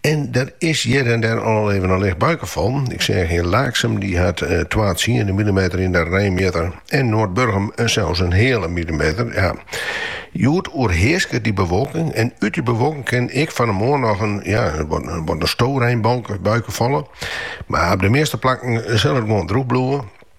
En der is hjir en dêr al even in licht buike fallen. Ik seach yn Laaksum, dy hat twa tsiende millimeter yn de reinmjitter en Noardburgum sels in heale millimeter. Ja, hjoed oerhearsket dy bewolking en út dy bewolking kin ek fan de moarn noch in, ja, wat in storeinbuike falle. Mar op de measte plakken sil it gewoan droech bliuwe.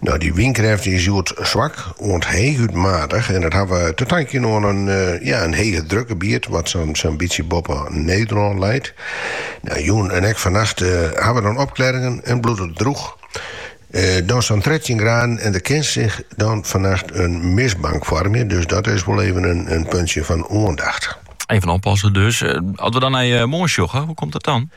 No, dy wynkrêft is hjoed swak oant heechút matich en dat hawwe te tankjen oan in, ja, in heech drukgebiet wat sa'n bytsje boppe Nederlân leit. No, jûn en ek fannacht hawwe dan opklearringen en bliuwt it droech. Dan sa'n trettjin graden en der kin sich dan fannacht in mistbank foarmje, dus dat is wol even in puntsje fan oandacht. Even oppassen dus. As we dan nei moarn sjogge, hoe komt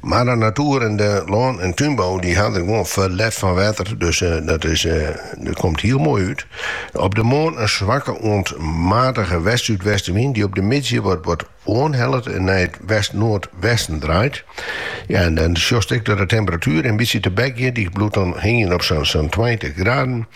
Mar de natoer en de lân en túnbou dy ha der gewoan ferlet fan wetter, dus dat is dat komt hiel moai út. Op de moarn in swakke oant matige west-súdwestenwyn dy op de middei wat wat oanhellet en nei it west-noardwesten draait. Ja en dan sjochst ek dat de temperatuer in bytsje tebek giet, dy bliuwt dan hingjen op sa'n sa'n tweintich graden.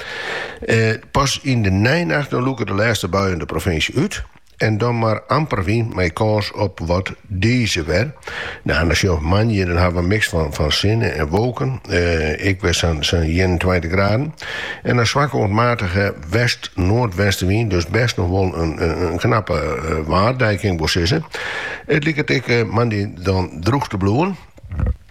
Pas yn de neinacht dan lûke de lêste buien de provinsje út. en dan mar amper wyn mei kâns op wat dize wer. No, dan sjoch moandei, dan hawwe we in miks fan, fan sinne en wolken. Uh, ek wer sa'n sa 21 graden. En in swakke oant matige west-noardwestenwyn, dus best nog wol in, in, knappe uh, eh, waardei kinst wol sizze. It liket ek moandei dan droech te bliuwen.